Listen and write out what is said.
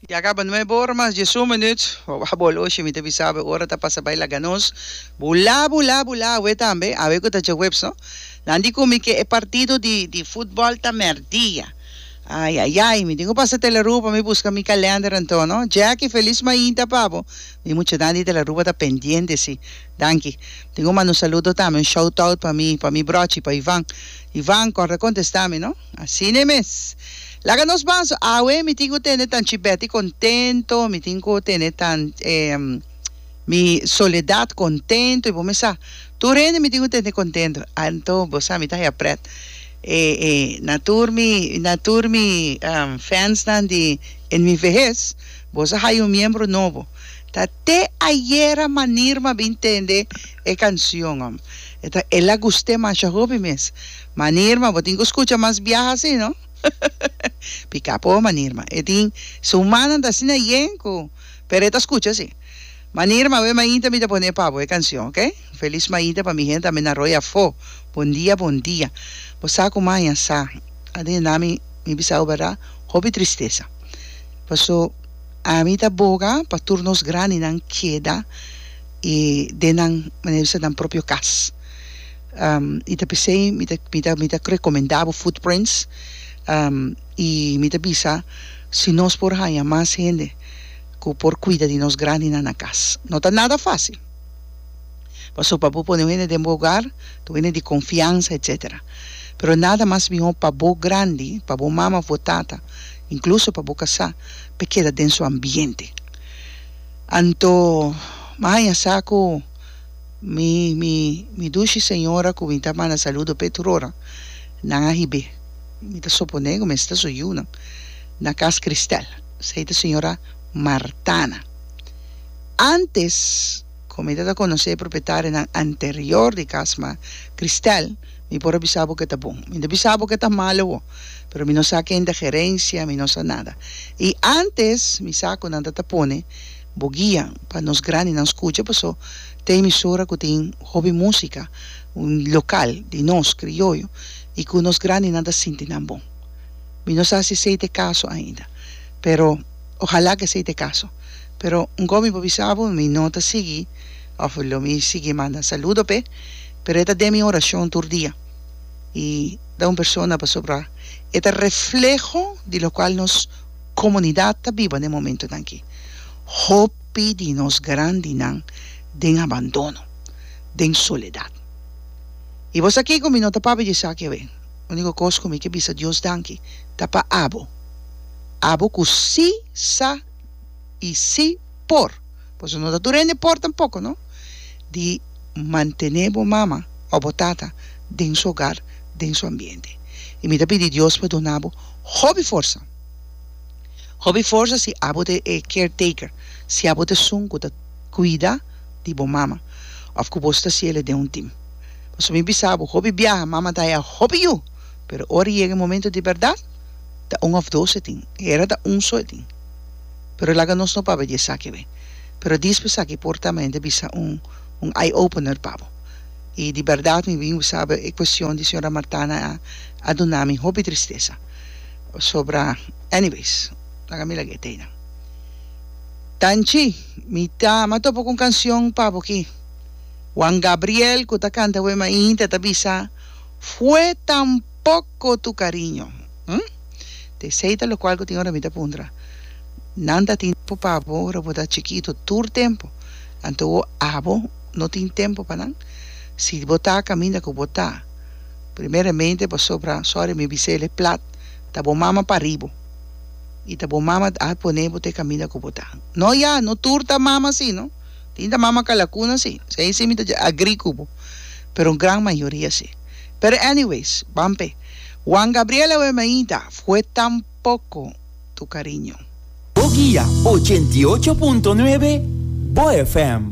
Ya caba nuebe ora mas diesun minuut. Wawa bol oshi mi ta bisa awe ora ta pasa bay laga nos bula bula bula awe tambe awe cu ta djahuebs no nan di cu mi ke e partido di di futbol ta merdia ay ay ay mi tin cu pasa telaru pa mi busca mi calender anto no Jacky feliz mainta pa bo mi muchanan di telaru ta pendiente si danki mi tin cu manda un saludo tambe un shout out pa mi pa mi brochi pa Ivan Ivan corta contesta mi no. Asina mes. Laga nos banso awe mi tin cu tene tan chibeti contento, mi tin cu tene tan mi soledad contento y bo mi sa tur hende mi tin cu tene contento anto bo sa mi ta haya pret e e na tur mi na tur mi fansnan di en mi vehes bo sa haya un miembro nobo ta te ayera manir mi a bin tende e cancion e ta el a guste masha hopi mes. Manirma, bo tin cu scucha mas biaha así, no? Pica po, Manirma. E tin su humannan ta asina yen cu, pero e ta scucha así. Manirma, awe mainta mi ta pone pa bo e cancion, ok? Feliz mainta pa mi hende, amena Roy afó. Bon dia, bon dia. Bo sa cu mai a sa, aden na mi, mi bisa bo berdad, hopi tristesa. Paso, ami ta boga pa tur nos grandinan keda den nan, mane bisa, nan propio cas. I ta p'esei mi ta mi ta mi ta rekomendá bo Footprints i mi ta bisa si nos por haña mas hende ku por kuida di nos grandinan na kas. No ta nada fásil, pasobra pa bo pone un hende den bo hogar ta un hende di konfiansa etcétera, pero nada mas mihó pa bo grandi, pa bo mama òf bo tata, inkluso pa bo kasá, pa e keda den su ambiente. Anto mi a haña sa ku. Mi, mi, mi dushi señora cu mi ta manda saludo p'e turonan, nan a hib'é. Mi ta soponé cu mester ta su yiunan na cas Christel. Esei ta señora Martana. Antes cu mi ta ta conocé e propietarianan anterior di cas ma Christel, mi por a bisa bo cu e ta bon. Mi no bisa bo cu e ta malo awo, pero mi no sa ken ta gerencia, mi no sa nada. Y antes mi sa cu nan ta ta pone. Bo guia pa nos grandinan scucha paso ta emisora cu tin hopi musica local di nos, crioyo, y cu nos grandinan ta sinti nan bon. Mi no sa si esey ta e caso ainda pero ohala cu esey ta e caso. Pero nco mi por bisa bo mi no ta sigui of lo mi sigui manda saludo p'e pero e ta den mi oracion tur dia y ta un persona pasobra e ta refleho di locual nos. Comunidad ta biba n'e momentonan aki. Hopi di nos grandinan den abandono, den soledad. Y bo sa kico? Mi no ta papia di esaki awe. Unico cos cu mi ke bisa Dios danki ta pa abo. Abo cu si sa y si por, pasobra no ta tur hende por tampoco, no, di mantene bo mama o bo tata den su hogar, den su ambiente. Y mi ta pidi Dios pa duna bo hopi forsa. Hopi forsa si abo ta e caretaker, si abo ta esun ku ta kuida di bo mama òf ku bo sta siel e den un tim. Pasobra mi bisa bo, hopi biaha mama ta haya hopi yu, pero ora e yega e momento di bèrdat, ta un òf dos e tin, e era ta un so e tin. Pero laga nos no papia di esaki awor. Pero dispè esaki por ta manera di bisa un un eye opener pa bo. I di bèrdat mi bin bisa bo e kuestion di señora Martana a duna mi hopi tristesa. Pasobra, anyways, laga mi laga e tei nan. Tanchi, mi ta ama topa ku un kansion pa bo aki. Juan Gabriel ku ta kanta Wee Ma'i Hinta ta bisa, Fue tan poco tu cariño, hm? Ta esei ta lokual ku tin ora mi ta puntra, Nan ta tin tempu pa bo ora bo ta chikitu tur tempu, anto abo no tin tempu pa nan? Si bo ta kaminda ku bo ta. Primeramente pasobra sorry mi bisel e plat ta bo mama paribo y ta bo mama a pone bo te caminda cu bo ta no ya no tur ta mama asi no tin ta mama calacuna si esey si mi ta dje agree cu bo pero un gran mayoria si pero anyways ban pe Juan Gabriel awe mi ain ta fue tan poco tu cariño. Bo guia ochenta y ocho punto nuebe, Bo FM.